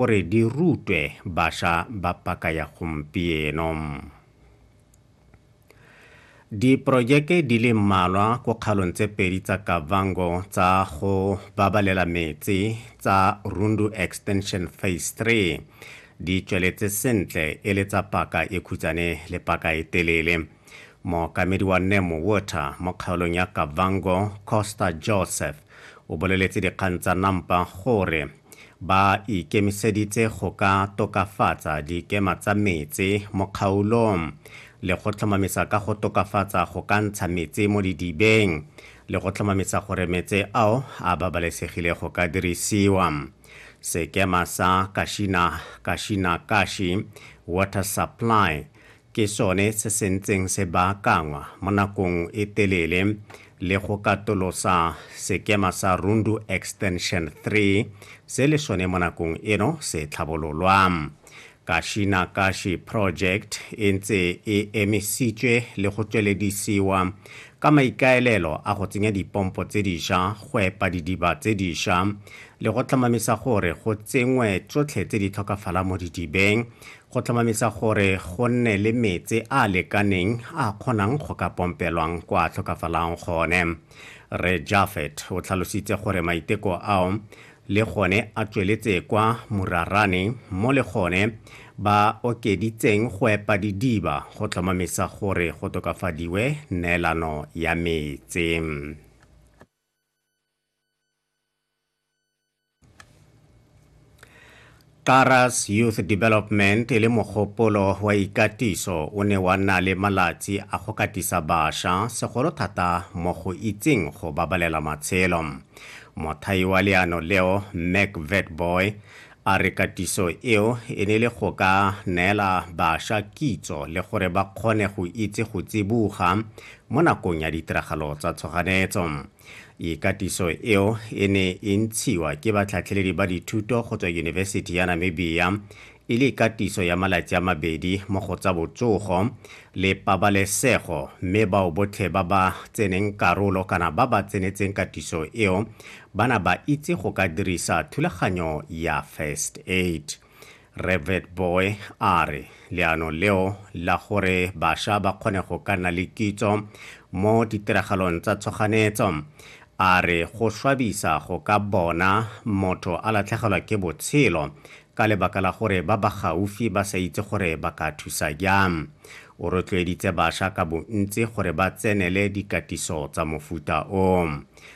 gore di rutwe basha ba paka ya gompieno. Diporojeke di le mmalwa ko kgalong tse pedi tsa Kavango tsa go babalela metsi tsa Rundu Extension Phase 3 di tsweletse sentle e le tsa paka e khutsane le paka e telele mookamedi wa nemo water mo kgaolong ya kavango costa joseph o boleletse dikgang tsa nampa gore Ba ikemiseditse go ka tokafatsa dikema tsa metsi mo kgaolong le go tlhomamisa ka go tokafatsa go ka ntsha metsi mo didibeng le go tlhomamisa gore metse ao a babalesegile go ka dirisiwa. Sekema sa Kashina Kashina Kashi Water Supply ke sone se se ntseng se baakangwa mo nakong e telele le go katolosa sekema sa Rundu Extension 3 se le sone mo nakong eno se tlhabololwa. Kashi na Kashi Project e ntse e emisitswe le go tsweledisiwa ka maikaelelo a go tsenya dipompo tse diša go epa didiba tse diša le go tlhomamisa gore go tsengwe tsotlhe tse di tlhokafala mo didibeng go tlhomamisa gore go nne le metse a a lekaneng a kgonang go ka pompelwang kwa tlhokafalang gone re jafet o tlhalositse gore maiteko ao le gone a tsweletse kwa morarane mo le gone ba okeditseng go epa didiba go tlhomamisa gore go tokafadiwe neelano ya metse Karas Youth Development e le mogopolo wa ikatiso o ne wa nna le malatsi a go katisa basha segolo thata mo go itseng go babalela matshelo. Mothai wa leano leo Mac Vetboy a re katiso eo e ne le go ka neela basha kitso le gore ba kgone go itse go tsiboga mo nakong ya ditiragalo tsa tshoganetso. ikatiso eo e ne e ntshiwa ke batlhatlheledi ba dithuto go tswa yunibesithi ya namibia e le ikatiso ya malatsi a mabedi mo go tsa botsogo le pabalesego mme bao botlhe ba ba tseneng karolo kana ba ba tsenetseng katiso eo bana ba itse go ka dirisa thulaganyo ya first aid Revet Boy a re leano leo la gore basha ba kgone go ka nna le kitso mo ditiragalong tsa tshoganetso a re go swabisa go ka bona motho a latlhegelwa ke botshelo ka lebaka la gore ba ba gaufi ba sa itse gore ba ka thusa jang o rotloeditse basha ka bontsi gore ba tsenele dikatiso tsa mofuta o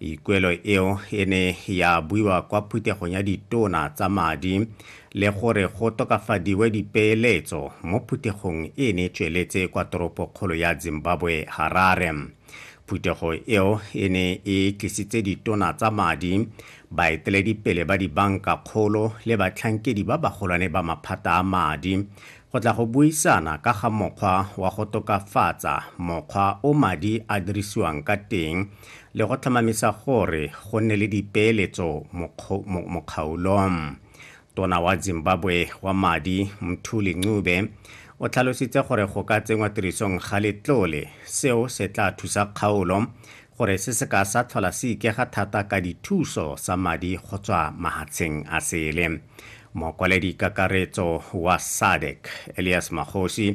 ikuelo eo e ne ya buiwa kwa phuthegong ya ditona tsa madi le gore go tokafadiwe dipeeletso mo phuthegong e ne tsweletse kwa toropokgolo ya zimbabwe harare phuthego eo e ne e tlisitse ditona tsa madi baeteledipele ba dibanka kgolo le batlhankedi ba bagolwane ba maphata a madi Go tla go buisana ka ga mokgwa wa go tokafatsa mokgwa o madi a dirisiwang ka teng le go tlhomamisa gore go nne le dipeeletso mokgaolong. Tona wa Zimbabwe wa madi Mthuli Ncube o tlhalositse gore go ka tsenngwa tirisong ga letlole seo se tla thusa kgaolo gore se se ka sa tlhola se ikega thata ka dithuso sa madi go tswa mahatsheng a sele. Mokwaledi kakaretso wa SADC Elias Magosi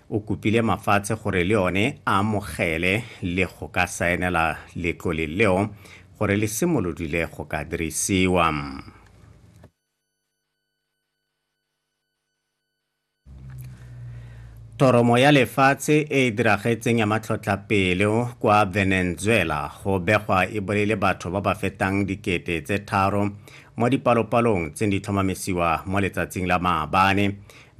o kopile mafatshe gore le one a amogele le go ka saenela letlole leo gore le simolodile go ka dirisiwa. Toromo ya lefatshe e e diragetseng ya matlhotlhapelo kwa Venezuela go begwa e bolaile batho ba ba fetang dikete tse tharo mo dipalopalong tse di tlhomamisiwa mo letsatsing la maabane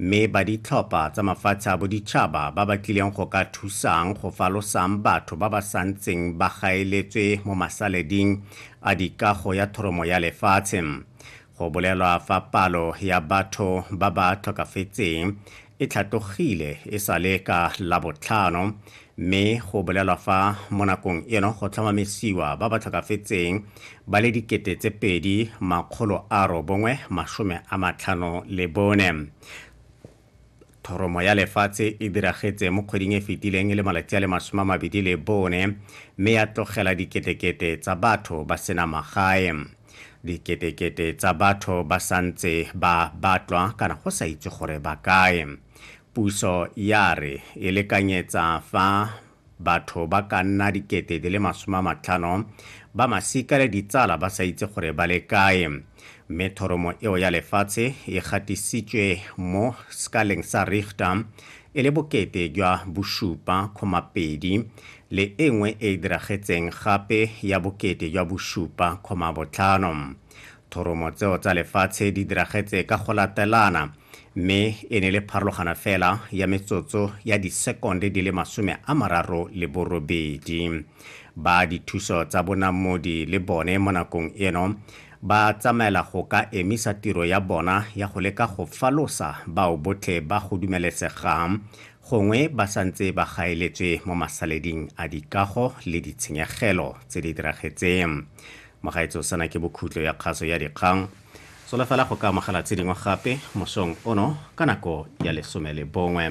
mme ba ditlhopha tsa mafatshe a boditšhaba ba ba tlileng go ka thusang go falosang batho ba ba santseng ba gaeletswe mo masaleding a dikago ya thoromo ya lefatshe Go bolelwa fa palo ya batho ba ba tlhokafetseng e tlhatogile e sa le ka labotlhano mme go bolelwa fa mo nakong eno go tlhomamisiwa ba ba tlhokafetseng ba le dikete tse pedi makgolo a robongwe masome a matlhano le bone Thoromo ya lefatshe e diragetse mo kgweding e fetileng e le malatsi a le masome a mabedi le bone mme ya tlogela diketekete tsa batho ba sena magae. Diketekete tsa batho ba santse ba batlwa kana go sa itse gore ba kae. Puso ya re e lekanyetsa fa Batho ba ka nna dikete di le masome a matlhano ba masika le ditsala ba sa itse gore ba le kae, mme thoromo eo ya lefatshe e gatisitswe mo sekaleng sa Richter e le bokete jwa bosupa kgoma pedi le e nngwe e e diragetseng gape ya bokete jwa bosupa kgoma botlhano. Thoromo tseo tsa lefatshe di diragetse ka go latelana mme e ne le pharologana fela ya metsotso ya disekonde di le masome a mararo le borobedi. Ba dithuso tsa bonamodi le bone mo nakong eno ba tsamaela go ka emisa tiro ya bona ya go leka go falosa bao botlhe ba go dumelesegang gongwe ba santse ba gaeletswe mo masaleding a dikago le ditshenyegelo tse di diragetseng Mogaetsho sena ke bokhutlo ya kgaso ya dikgang. Solofela go ka amogela tse dingwe gape mosong ono ka nako ya lesome le bongwe.